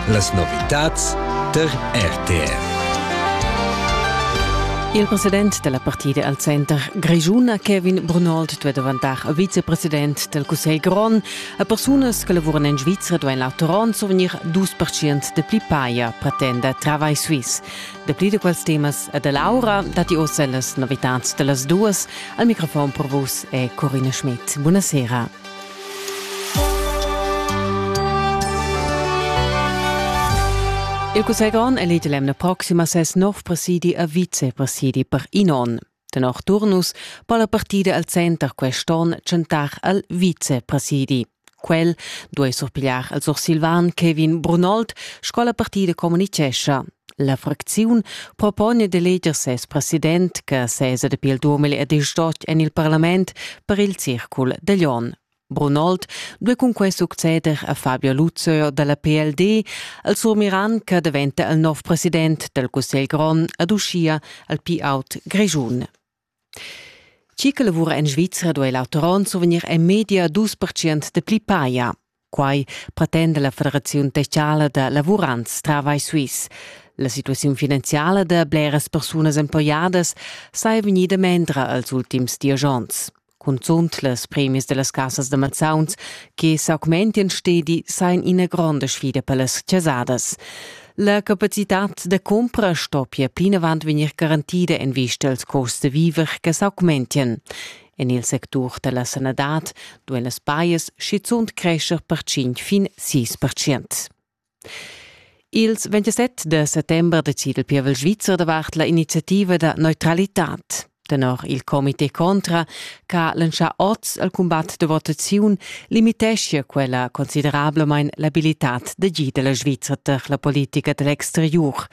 Las novitads tar RTR. Il president della partida al Center Grischuna, Kevin Brunold, duet davantar a vicepresident del Cussegl Grond a persunas che lavoran in Svizzera u en la Toronto venir dus percent de pli paia, pretenda Travai Suisse. De pli de quels temas e de Laura dati ossa las novitats dellas duas al microfon per vus e Corina Schmidt. Buonasera. Il cussegl grond elege l'emna proxima ses nov presidi a vicepresidi per in onn. Tenor Turnus po la partida al center quest'onn tschentar al vicepresidi. Quel duei surpigliar al sursilvan Kevin Brunold, sco la partida communicescha. La fracziun propone d'eleger ses president che sesa dapi il 2018 en il parlament per il circul de Lyon. Brunold due cunque succeder a Fabio Luzio dalla PLD al surmiran che diventa il nov president del Cussegl grond ad uscia al P-out Grigiun. Chi che lavura en Svizra duei l'auter onn survegnir en media dus percent dapli paja. Quai pretenda la Federaziun techala da lavurants Travai Suisse. La situaziun finanziala da bleras persunas emploiadas sai vegnida mendra als ultims dies onns. Cunzunt las premis dellas casas da mazzauns che s'augmentian stedi sain ina gronda sfida per las chasadas. La capacitad da cumpra sto pia plinavant vegnir garantida en vista als costs da viver che s'augmentien. En il sectur da la sanadad duain las bias schizunt crescher per 5 fin 6 percent. Ils 27 de settembre decide il pievel svizzer davart la iniziativa da neutralitad. Tenor il comité contra ch'ha lantschà oz al cumbat da votaziun limiteschia quella considerablamain l'abilitad d'agir da la Svizra tar la politica da l'exteriur.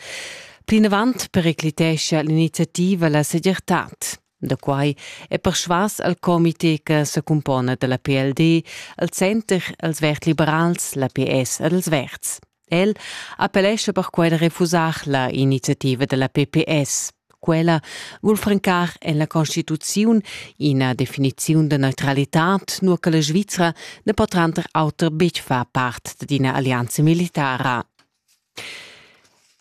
Plinavant periclitescha l'iniziativa la segirtad. Da quai è persvas al comité che se cumpona da la PLD, al Center, als Vert Liberals, la PS ed als Verds. El appellescha perquai da refusar la iniziativa della PPS. Quella vul francar en la Constituziun ina definiziun da neutralitad, nur che la Svizra ne po tranter auter betg far part d'ina alleanza militara.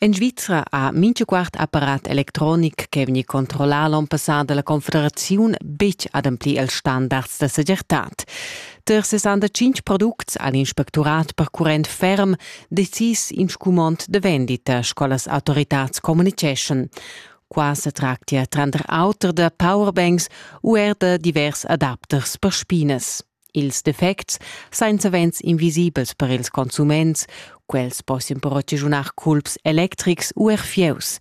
En Svizra ha minchaquart apparat electronic che vegni controllà l'on passà dalla Confederaziun betg ademplir els standards da segirtad. Per 65 products ha l'inspectorat percurrent ferm decis in scumond de vendita, sco las autoritads communiceschan. Qua se tractia tranter auter da powerbanks u er da divers adapters per spines. Ils defects sain savens invisibels per ils consuments, quels possian però ragiunar culps electrics u er fieus.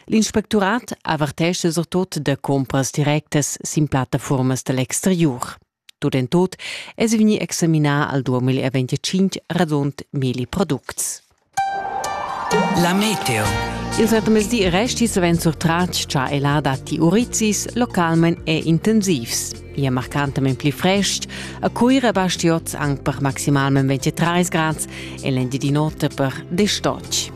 L'inspectorat avertesce surtut da compras directas sin plattaformas dell'exteriur. Tut en tut es vegni examinà al 2025 radund milli products. La meteo. Il satemesdi resti savens surtratg cha el ha datti urizis localment e intensivs. Ia marcantament pli frest, a Cuira basti oz anc per maximalment 23 grads e l'endi di notte per 10 stotg.